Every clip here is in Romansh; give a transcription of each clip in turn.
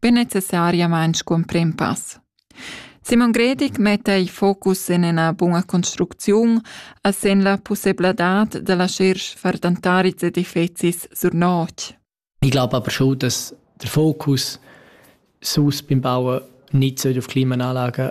be necessariamain scumprim pass. Simon Gredig metta il focus en ina buna construcziun a sen la pussebladad da lascher far dantaris edifizis sur notg. Ich glaube aber schon, dass der Fokus sus beim Bauen nicht auf Klimaanlagen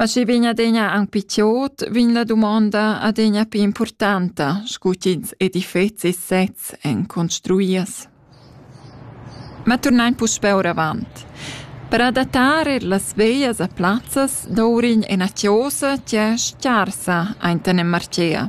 Ma schi vegn adegna aunc piçiot, vegn la dumonda adegna pli importanta, scu ch'ins edifets e sezs èn construias. Ma turnain puspè oravant. Per adattar er las veglias a plazzas dovrign ena chiosa ch'è scarsa ainten en Marcea.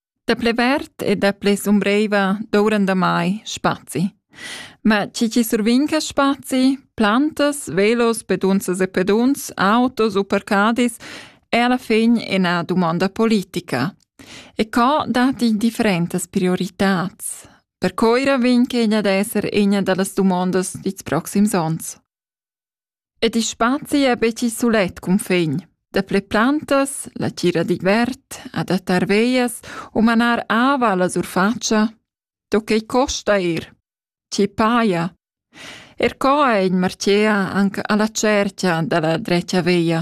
Daplè vert e daplè sumbreiva douran damai spazi. Ma chi chi survinca spazi, plantas, velos, pedunsas e peduns, autos u parcadis, è alla fin ina domanda politica. E co dati differentas prioritats? Per coira vin che egna d'esser egna dallas domandas dits proxims ons. Ed il spazi è betg sulet cunfin. Dapli plantas, la tgira digl vert, adattar veias u manar ava alla surfatscha. Do quei costa ir. Ti paia. Er co è in martia anche alla cerchia dalla dretga veia.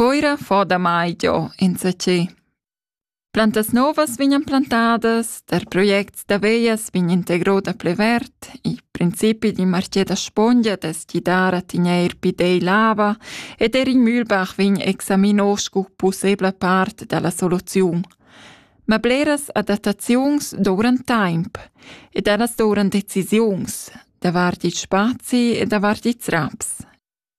Coira fa damai giò insatgè. Plantas novas vegnan plantadas, tar projects da veglias vegn integro da plü verd, il principi d'ün marchè da spongia dess gidar a tegnair pidei l'ava ed eir il Mühlbach vegn examino scu pussebla part da la soluziun. Ma bleras adattaziuns dovran temp ed ellas dovran decisiuns davart il spazi e davart ils raps.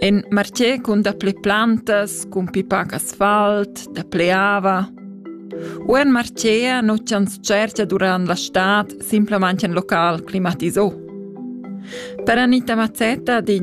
In martier cun dapli plantas, cun pipac asfalt, dapli ava. U in martier nu tschantschercha durant la stad simplamaing ün local climatisà. Per Anita Mazzetta din